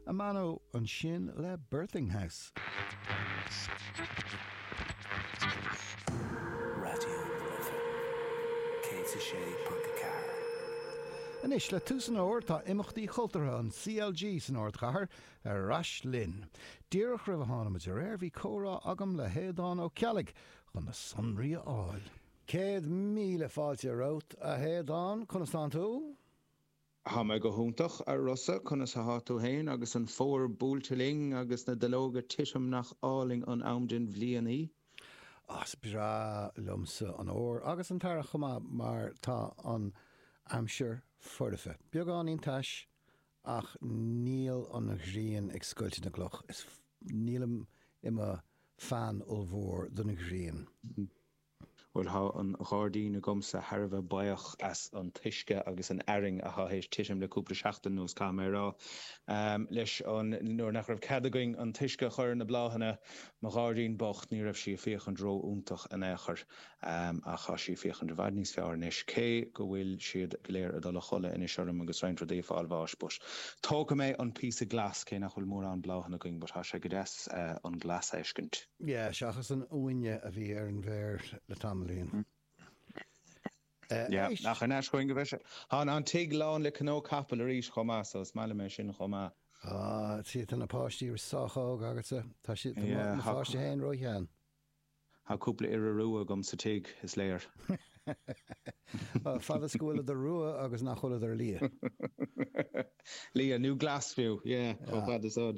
A meána ansin le Birthing House. Raidió Life, céad is a sé ponc a ceathair. Anois le tús an fhómhair tá imeachtaí chultúrtha an CLG san ardchathair ar ais linn. Díreach roimh a tháinig muid ar aer bhí comhrá agam le hAodán Ó Ceallaigh chun na sonraí a fháil. Céad míle fáilte romhat, a Aodáin. Conas tánn tú? Tá mé go hiontach, a Rossa, conas athá tú fhéin, agus an fómhar buailte linn, agus na duilleoga titim, nach álainn an am den bhliain í. Ó, is breá liomsa an fómhar, agus an t-earrach chomh maith, mar tá an aimsir foirfe, beagáinín tais, ach níl an ghrian ag scoilteadh na gcloch, is nílim i mo fan ollmhór don ghrian. Bhuel, tá an gairdín agamsa thar a bheith buíoch as an t-uisce agus an fhearthainn atá théis titim le cúpla seachtain anuas, caithfidh mé a rá. Leis an uair nach raibh cead againn an t-uisce a chur ar na bláthanna, mo ghairdín bocht, ní raibh sí ag féachaint ró-iontach in aon chor. Ach tá sí ag féachaint i bhfad níos fearr anois, cé go bhfuil siad go léir ag dul a chodladh anois orm agus roinnt rudaí ag fáil bháis. But tógfaidh mé an píosa glas, cé nach bhfuil mórán bláthanna againn, but tá sé go deas an glas a fheiscint. Yeah, seachas an uaine a bhí ar an bhféar le tamaillín. Yeah, an aois choinn go bheith. Tá an tig lán le cnónna capaill arís chomh maith, so is maith liom é sin chomh maith. Ah, see, tá na páistí sách óg agatsa. Tá siad, tá na páistí féin ró-shean. Tá cúpla iora rua agam sa tigh, is léir. Fad is go bhfuil siad rua agus nach bhfuil siad liath. Liath, nó glas fiú, yeah, chomh fad is a.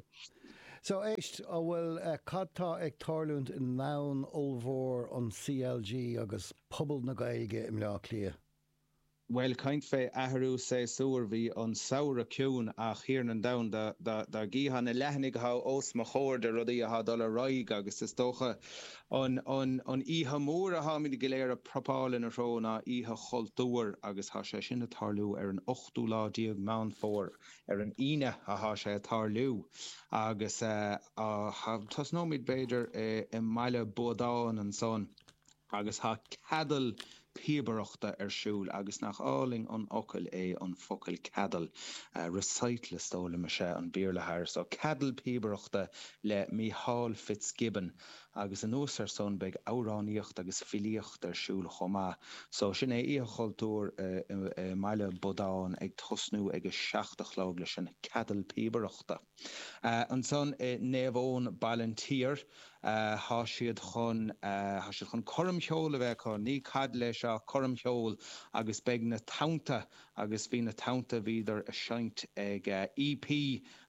So, éist, a bhfuil, cad tá ag tarlúint i ndomhan ollmhór an CLG agus pobal na Gaeilge i mBleá Cliath? Bhuel, caint fé athrú séasúir, bhí an samhradh ciúin ach a thiarna domhain do, do, dá gcífeá na leathanaigh a thá os mo chomhair de rudaí a thá dul ar aghaidh agus is dócha an, an, an oíche mhór a tháimid go léir a propáil ina threo ná Oíche Chultúir agus thá sé sin a' tarlú ar an ochtú lá déag Meán Fómhair, ar an Aoine athá sé ag tarlú, agus tosnóimid b'fhéidir i mBaile Buadáin ansan, agus tá ceadal píobaireachta ar siúl, agus nach álainn an focal é an focal ceadal, recital is dóigh liom is é an Béarla thair so, ceadal píobaireachta le Mícheál Fitzgibbon. agus anuas ar san beidh amhránaíocht agus filíocht ar siúl chomh maith. So sin é Oíche Chultúir i mBaile Buadáin ag tosnú ag a seacht a chlog leis an Ceadal Píobaireachta. Ansan i Naomh Eoin, Ballinteer, thá siad chun thá siad chun coirm cheoil a bheith acu, ní ceadal é seo, coirm cheoil agus beidh Na Tonnta agus bhí Na Tonnta bhíodar ag seinnt ag EP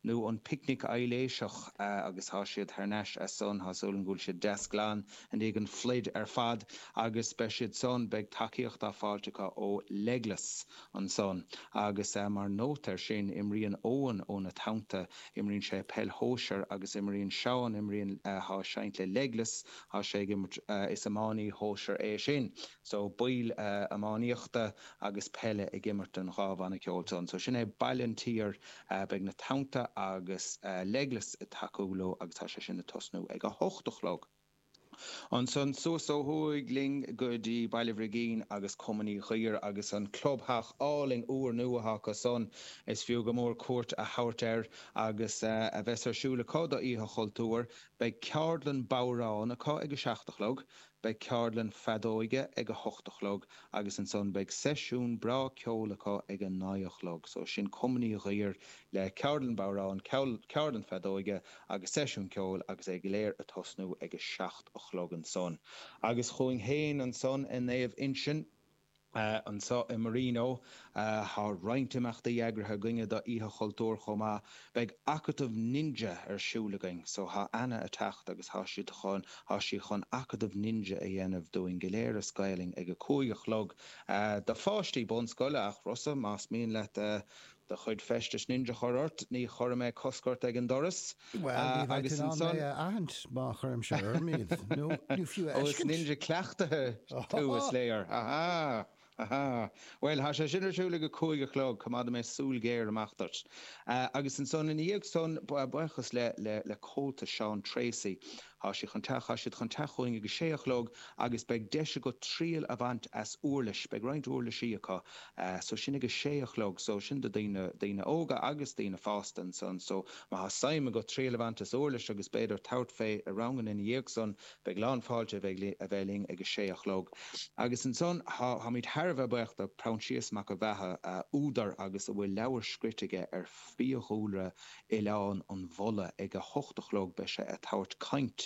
nó an Picnic Aibhléiseach, agus tá siad thar n-ais as san, tá súil agam go bhfuil siad deas glan i ndiaidh an phluid ar fad, agus beidh siad san, beidh tacaíocht á fáilt acu ó Legless ansan. Agus mar note ar sin, imríonn Eoin ó na Tonnta, imríonn sé peil shóisir, agus imríonn Seán, imríonn, thá seinnt le Legless, thá sé ag imirt, is iománaí shóisir é sin, so baill iománaíochta agus peile ag imirt don dhá bhanna ceoil san. So sin é Baile an tSaoir. Beidh Na Tonnta agus legless ag tacú leo agus tá sé sin ag tosnú ag a hocht a chlog. Ansan suas ó thuaidh linn go dtí Baile Bhrigín agus Cumann Uí Dhuibhir agus an clubtheach álainn úr nua atá acu san. Is fiú go mór cuairt a thabhairt air agus a bheas ar siúl acu do Oíche Chultúir. Beidh ceardlann bodhráin acu ag a seacht a chlog. Beidh ceardlann feadóige ag a hocht a chlog agus ansan beidh seisiún breá ceoil acu ag a naoi a chlog. So sin Cumann Uí Dhuibhir le ceardlann bodhrán, ceardlann feadóige agus seisiún ceoil agus é go léir ag tosnú ag a seacht a chlog ansan. Agus chugainn féin ansan i Naomh Uinseann, Anseo i Marino, tá roinnt imeachtaí eagraithe againne do Oíche Chultúir chomh maith. Beidh Acadamh Ninja ar siúl againn, so tá Anna ag teacht agus tá siad chun, tá sí chun Acadamh Ninja a dhéanamh dúinn go léir as Gaelainn ag a cúig a chlog, do pháistí bunscoile ach Rossa más mian leat do chuid feistis ninja a chur ort, ní chuirfidh mé cosc ort ag an doras. Bhuel, ní bheidh tú in ann mé a aithint má chuirimse orm iad, nó ní fiú a fheiscint. Ó, is ninja cleachtaithe tú, is léir. Ha ha! Ha ha! Bhuel, tá sé sin ar siúl ag a cúig a chlog, coimeádfaidh mé súil ghéar amach duit. Agus ansan, ina dhiaidh san, buíochas le Comhaltas Seán Treacy, Tá sé chun teach, tá siad chun teacht chugainn ag a sé a chlog agus beidh deis agat triail a bhaint as uirlis, beidh roinnt uirlisí acu, so sin ag a sé a chlog, so sin do dhaoine, daoine óga agus daoine fásta ansan, so má tá suim agat triail a bhaint as uirlis agus b'fhéidir tabhairt fé i ranganna ina dhiaidh san, beidh lán fáilte a bheith, a bheith linn ag a sé a chlog. Agus ansan tá, táimid thar a bheith buíoch do Proinsias Mac an Bheatha, údar agus a bhfuil leabhair scríte aige ar. fiadhúlra Oileán an Bhulla ag a hocht a chlog beidh sé a' tabhairt caint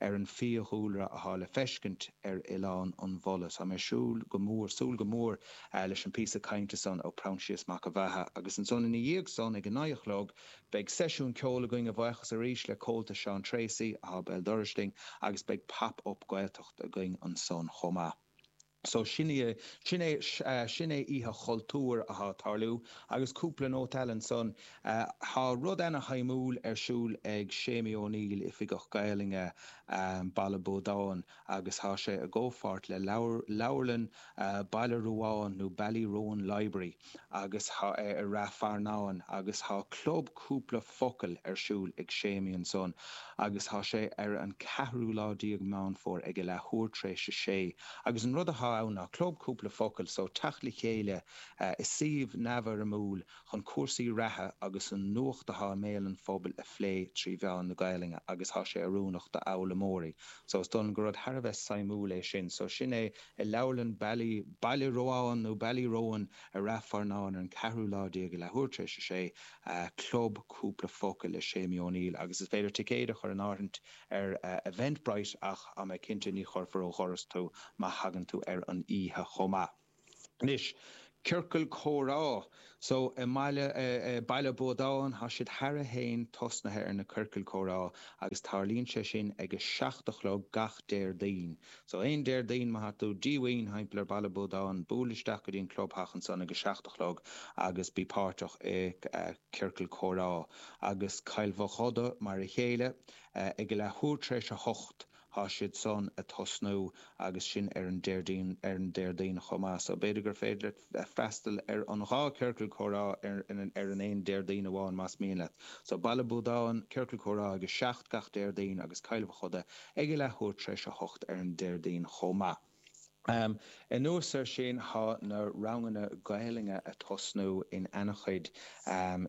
ar an fiadhúlra athá le feiscint ar Oileán an Bhulla. Tá mé siúl go mór, súil go mór leis an píosa cainte san ó Proinsias Mac a' Bheatha. Agus ansan ina dhiaidh san ag a naoi a chlog beidh seisiún ceoil againn, a bhuíochas arís le Comhaltas Seán Treacy athá béal dorais linn agus beidh Pop Up Gaeltacht againn ansan chomh maith. So sin í, sin é, sin é oíche chultúir atá ag tarlú. Agus cúpla nóta eile ansan, tá rud ana shuimiúil ar siúl ag Séimí Ó Néill, Oifigeach Gaelainne Baile Buadáin, agus tá sé i gcomhpháirt le leabharlann Bhaile Ruadháin nó Ballyroan Library. agus tá sé i Ráth Fearnáin agus tá club cúpla focal ar siúl ag Séimí ansan agus tá sé ar an ceathrú lá déag Meán Fómhair ag a leathuair tar éis a sé agus an rud atá ann ná club cúpla focal so teacht le chéile i suíomh neamhfhoirmiúil chun cúrsaí reatha agus an nuacht atá i mbéal an phobail a phlé trí mheán na Gaelainne agus tá sé oiriúnach d'fhoghlaimeoirí so is dóigh liom gur rud thar a bheith suimiúil é sin so sin é I leabharlann Bally, Baile Ruadháin nó Ballyroan, i Ráth Fearnáin ar an ceathrú lá déag leathuair tar éis a sé, Club Cúpla Focal le Séimí Ó Néill agus is féidir ticéid a chur in áirithint ar Eventbrite ach tá mé cinnte ní chuirfear ó dhoras tú má thagann tú ar an oíche chomh maith. Anois ciorcail comhrá so i mBaile Baile Buadáin, tá siad cheana féin tosnaithe ar na ciorcail comhrá agus tarlaíonn sé sin ag a seacht a chlog gach Déardaoin. So aon Déardaoin, má tá tú díomhaoin, thimpeall ar Baile Buadáin, buail isteach go dtí an clubtheach ansan ag a seacht a chlog agus bí páirteach i ciorcal comhrá. Agus Cill Mhochuda, mar a chéile, ag a leathuair tar éis a hocht, Tá siad san a' tosnú agus sin ar an Déardaoin, ar an Déardaoin chomh maith. So b'fhéidir gur féidir leat freastal ar an dhá ciorcal comhrá ar, ar an aon Déardaoin amháin más mian leat. So Baile Buadáin, ciorcal comhrá ag a seacht gach Déardaoin agus Cill Mhochuda ag a leathuair tar éis a hocht ar an Déardaoin chomh maith. Anuas air sin, tá na ranganna Gaelainne a tosnú in an-chuid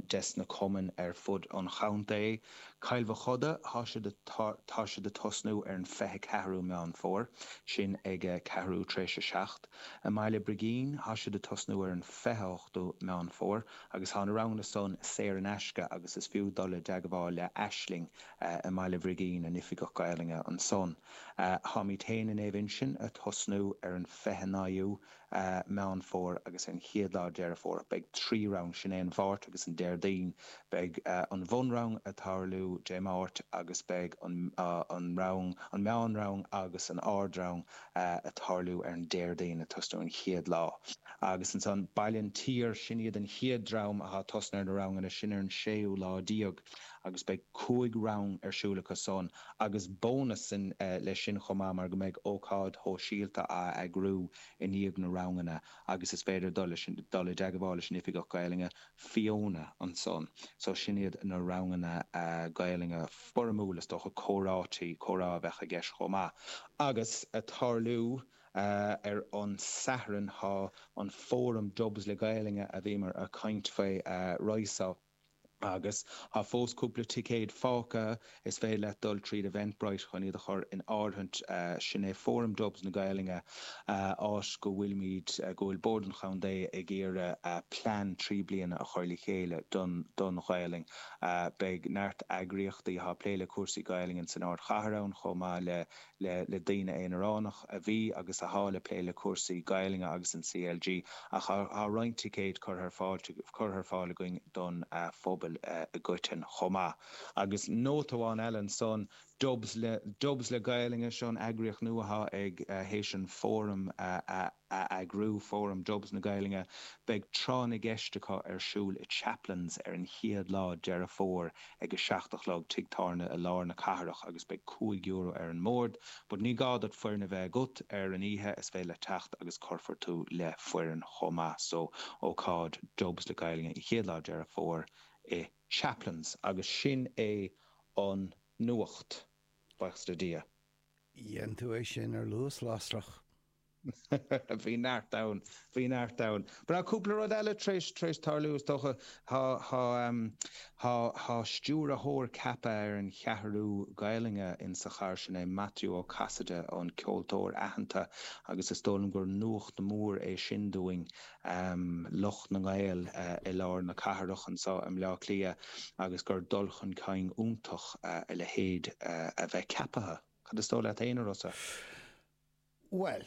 des na cumainn ar fud an chontae. Cill Mhochuda, tá siad a tosnú ar an fiche ceathrú Meán Fómhair, sin ag ceathrú tar éis a seacht. I mBaile Brigín, tá siad a tosnú ar an fiche hochtú Meán Fómhair agus tá na ranganna san saor in aisce agus is fiú dul i dteagmháil le Aisling i mBaile Bhrigín, an Oifigeach Gaelainne ansan. Táimid féin i Naomh Uinseann a' tosnú ar an 29ú Meán Fómhair agus ar an 1ú lá Deireadh Fómhair. Beidh trí rang, sin é an Mháirt agus an Déardaoin. Beidh an bhunrang ag tarlú Dé Máirt agus beidh an rang, an meánrang agus an ardrang ag tarlú ar an Déardaoin ag tosnú an chéad lá. Agus ansan Baile an tSaoir, sin iad an chéad dream athá ag tosnú ar na ranganna, sin ar an séú lá déag agus beidh cúig rang ar siúl acu san. agus bónas leis sin chomh maith mar go mbeidh ócáid shóisialta á eagrú i ndiaidh na ranganna agus is féidir dul, dul i dteagmháil leis an Oifigeach Gaelainne, Fiona, ansan. So sin iad na ranganna Gaelainne foirmiúla, is dócha comhráití, comhrá a bheadh i gceist chomh maith. Agus a' tarlú ar an Satharn, thá an fóram Dubs le Gaelainne a bhíomar a' caint faoi, right so, Agus tá fós cúpla ticéad fágtha, is féidir leat dul tríd Eventbrite chun iad a chur in áirithint. Sin é Fóram Dubs na Gaelainne, áit go bhfuilimid, go bhfuil Bord an Chontae ag iarraidh plean trí bliana a chur le chéile don, don Ghaelainn. Beidh neart eagraíochtaí athá ag plé le cúrsaí Gaelainne san ardchathair ann chomh maith le. le daoine aonaránach a bhí agus athá le plé le cúrsaí Gaelainne agus an CLG, ach thá roinnt ticéad curtha ar fáil againn don phobal i gcoiteann chomh maith. Agus nóta amháin eile ansan, Dub le, Dubs le Gaelainne, seo an eagraíocht nua athá ag, théis an Fóram a. a eagrú, Fóram Dubs na Gaelainne, Beidh Tráth na gCeist acu ar siúl i Chaplins ar an chéad lá Deireadh Fómhair ag a seacht a chlog, tigh tábhairne i lár na cathrach agus beidh cúig euro ar an mbord. But ní gá duit foireann a bheith agat ar an oíche, is féidir leat teacht agus cuirfear tú le foireann chomh maith. So, ócáid Dubs le Gaelainne an chéad lá Deireadh Fómhair i Chaplins. Agus sin é an nuacht, baochas le Dia. Dhein tú é sin ar luas lasrach. Bhí neart ann, bhí neart ann. Breá cúpla rud eile tar éis, tar éis tarlú is dócha. Tá, tá, tá, tá stiúrthóir ceaptha ar an Cheathrú Gaelainne insa chathair, sin é Maitiú Ó Casaide, an ceoltóir aitheanta agus is dóigh liom gur nuacht mhór é sin dúinn, lucht na nGael i lár na cathrach anso i mBleá Cliath agus gur dul chun cinn iontach a leithéid a bheith ceapaithe. Cad is dóigh leat fhéin, a Rossa? Bhuel.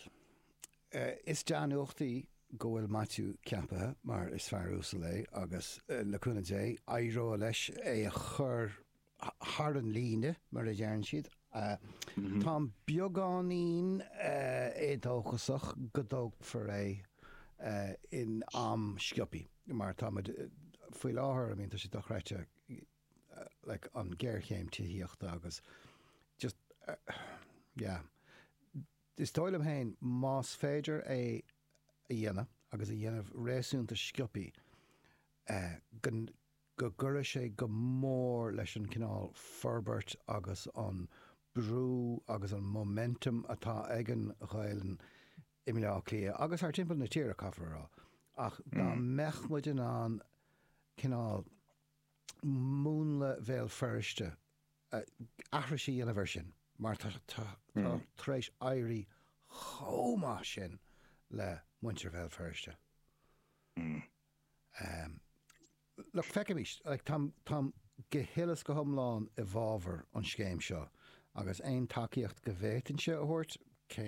is dea-nuacht í go bhfuil Maitiú ceapaithe mar is fear uasal é agus, le cúnamh Dé, éireoidh leis é a chur thar an líne, mar a deireann siad. Táim beagáinín éadóchasach go dtógfar é in am sciobthaí mar tá muid, faoi láthair, I mean, tá sé dochreidte. like an géarchéim tithíochta agus just yeah. Is dóigh liom féin más féidir é a dhéanamh agus a dhéanamh réasúnta sciopthaí go gcuirfeadh sé go mór leis an cineál forbairt agus an brú agus an momentum atá ag an Ghaelainn i mBleá Cliath agus thart timpeall na tíre caithfear a rá ach dá mbeadh muid in ann cineál múnla Bhéal Feirste, aithris a dhéanamh air sin, mar tá tar éis éirí chomh maith sin le muintir Bhéal Feirste. Feicimís, táim go huile is go hiomlán i bhfábhar an scéim seo agus aon tacaíocht go bhféadfainnse a thabhairt, cé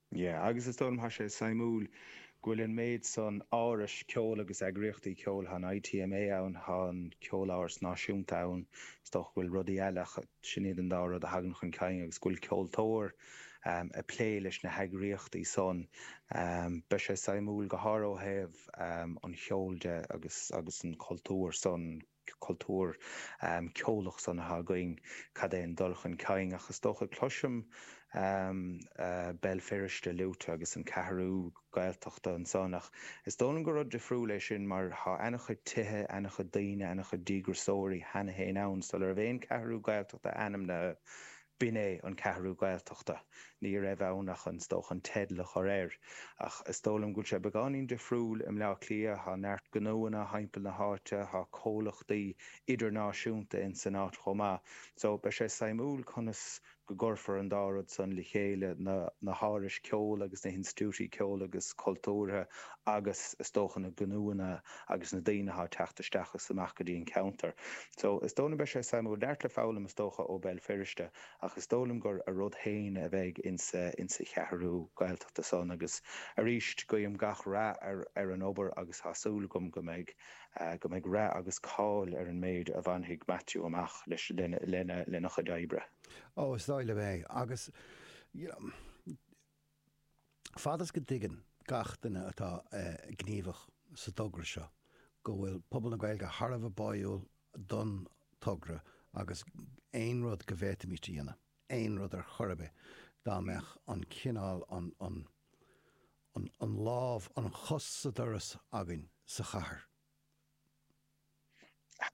Yeah, agus is dóigh liom tá sé suimiúil go bhfuil an méid san árais ceoil agus eagraíochtaí ceoil, tá an ITMA ann, tá an Ceoláras Náisiúnta ann, is dócha go bhfuil rudaí eile ach sin iad an dá rud a thagann chun cinn agus go bhfuil ceoltóir ag plé leis na heagraíochtaí san. Beidh sé suimiúil go háirithe ó thaobh an cheoil de agus agus an chultúir san. cultúr ceolach sonraithe againn, cad é an dul chun cinn ach is dócha, cloisim Béal Feirste luaite agus an Ceathrú Gaeltachta ansan ach is dóigh liom gur rud difriúil é sin mar tá ana-chuid tithe, ana-chuid daoine, ana-chuid díograsóirí cheana féin ann sular bh'aon Ceathrú Gaeltachta ainmnithe. B'in é an Ceathrú Ghaeltachta. Ní raibh ann ach, is dócha, an teideal a chur air. Ach is dóigh liom go bhfuil sé beagáinín difriúil i mBleá Cliath. Tá neart gnóanna thimpeall na háite. Tá comhlachtaí idirnáisiúnta insan áit chomh maith. So, beidh sé suimiúil conas go gcuirfear an dá rud san le chéile, na hárais ceoil agus na hinstiúití ceoil agus cultúrtha agus, is dócha, na gnóanna. agus na daoine atá ag teacht isteach is amach go dtí an ceantar. So, is dóigh liom beidh sé suimiúil. Neart le foghlaim, is dócha, ó Bhéal Feirste, ach is dóigh liom gur a rud féin a bheidh insa, insa Cheathrú Gaeltachta san agus arís, guím gach rath ar, ar an obair agus tá súil agam go mbeidh, go mbeidh rath agus cáil ar an méid a bhainfidh Maitiú amach leis, lena, lena, lena chuid oibre. Ó, is dóigh liom é. Agus, you know, Fad is go dtuigeann gach duine atá gníomhach sa togra seo go bhfuil pobal na Gaeilge thar a bheith báúil don togra agus aon rud go bhféadfaimist a dhéanamh, aon rud ar chor ar bith, dá mbeadh an cineál, an lámh, an chos sa doras againn sa chathair,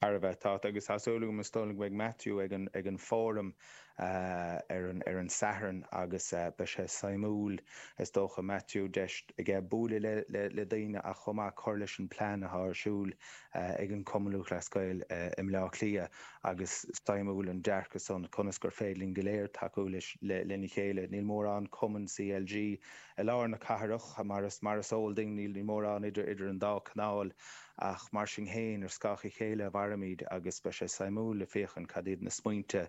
thar a bheith, tá, agus tá súil agam is dóigh go mbeidh Matthew ag an Fóram ar an Sathairn agus beidh sé suimiúil is dócha, Matthew, deis aige buaileadh le daoine ach chomh maith cur leis an plean atá ar siúl ag an Cumann Lúthchleas Gael i mBleá Cliath agus suimiúil an dearcadh san conas gur féidir linn go léir tacú lena chéile. Níl mórán cumann CLG. I lár na cathrach, mar is eol duinn, níl mórán idir idir an dá canáil, ach mar sin féin, ar scáth a chéile a mhairimid agus beidh sé suimiúil le féachaint cad iad na smaointe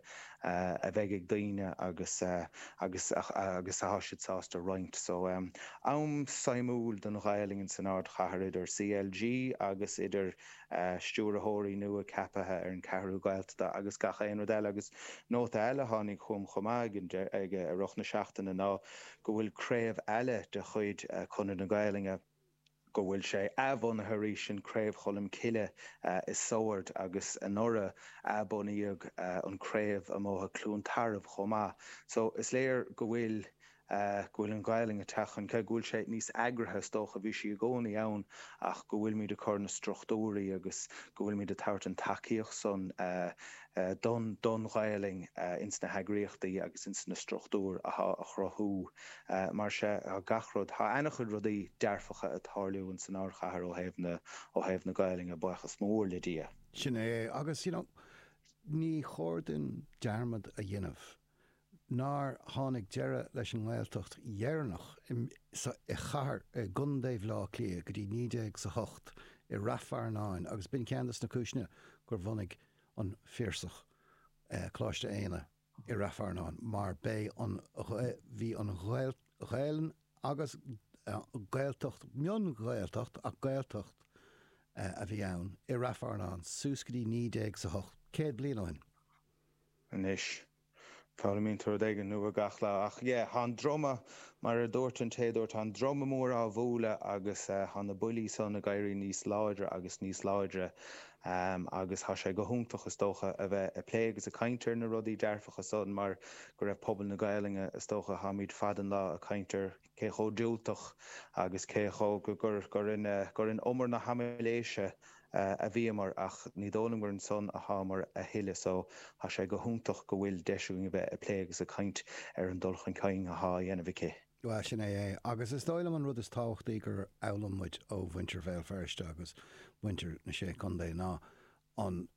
a bheidh ag daoine agus agus agus atá siad sásta roinnt. So, am suimiúil don Ghaelainn insan Ardchathair idir CLG agus idir. stiúrthóirí nua ceapaithe ar an Cheathrú Ghaeltachta agus gach aon rud eile. Agus nóta eile a tháinig chugam chomh maith i rith na seachtaine ná go bhfuil craobh eile de chuid Chonradh na Gaolainne, go bhfuil sé athbhunaithe arís, sin Craobh Choilm Cille i Sord agus anuraidh athbunaíodh an chraobh i mBóthar Chluain Tarbh chomh maith. So is léir go bhfuil go bhfuil an Ghaelainn ag teacht chun cinn, go bhfuil sé níos eagraithe, is dócha, bhí sí i gcónaí ann ach go bhfuilimid ag cur na struchtúirí agus go bhfuilimid ag tabhairt an tacaíocht san don don Ghaelainn ins na heagraíochtaí agus ins na struchtúir athá a chruthú mar sea, thá gach rud, thá ana-chuid rudaí dearfacha ag tarlú ins an ardchathair ó thaobh na, ó thaobh na Gaelainne, baochas mór le Dia. Sin é, agus you know, ní chóir duinn dearmad a dhéanamh nár tháinig deireadh leis an nGaeltacht dheireanach sa i chathair i gContae Bhaile Átha Cliath go dtí 1900 is a hocht i Ráth Fearnáin agus b'in ceann de na cúiseanna gur bhunaigh an Piarsach Coláiste Éanna i Ráth Fearnáin mar b'é an bhí an Ghaelainn agus Gaeltacht mion-Ghaeltacht ach Gaeltacht a bhí ann i Ráth Fearnáin suas go dtí 1900 is a hocht, céad bliain ó shin. Anois, foghlaimíonn tú rud éigin nua gach lá. Ach yeah, thá an druma, mar a dúirt an té a dúirt, thá an druma mór á bhualadh agus thá na buillí san ag éirí níos láidre agus níos láidre agus thá sé go hiontach, is dócha, a bheith ag plé agus ag caint ar na rudaí dearfacha san mar go ró... pobal na Gaelainne, is dócha, tháimid fad an lá ag caint ar cé chomh diúltach agus cé chomh gur in umar na haimiléise a bhíomar ach ní dóigh liom gur ansan athámar a thuilleadh so tá sé go hiontach go bhfuil deis againn a bheith ag plé agus ag caint ar an dul chun cinn athá a dhéanamh aici. Bhuel, sin é é. Agus is dóigh liom an rud is tábhachtaí gur fhoghlaim muid ó mhuintir Bhéal Feirste agus muintir na Sé Chontae ná an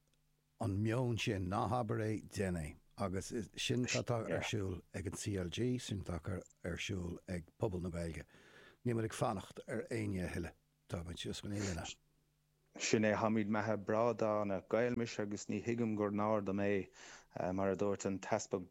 an meon sin, ná habair é, déan é. Agus sin atá ar siúl ag an CLG, sin atá ar siúl ag pobal na Gaeilge. Níl muid ag fanacht ar éinne a thuilleadh, tá muid síos go naíolanna. Ach sin é, táimid meatha breá dána. Gael mise agus ní thuigim gur náir dom é, mar a dúirt an tEaspag.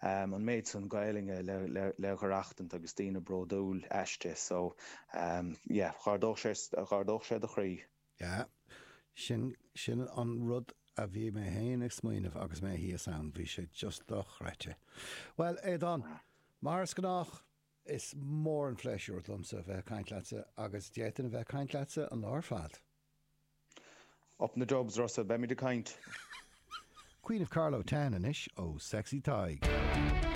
an méid san Gaeluinge le dh'aireachtaint agus daoine bródúil aisti so yeah dh'ardódh sé do chroí. Yeah. Sin, sin an rud a bhí mé féin ag smaoineamh agus mé thíos ann, bhí sé just dochreidte. Bhuel, Aodán, mar is gnách, is mór an phléisiúr domsa bheith ag caint leatsa agus d'fhéadfainn a bheith ag caint leatsa an lá ar fad. Up in the Dubs, Russell, beimid ag caint! Queen of Carlow Town anois ó Sexy Tadhg.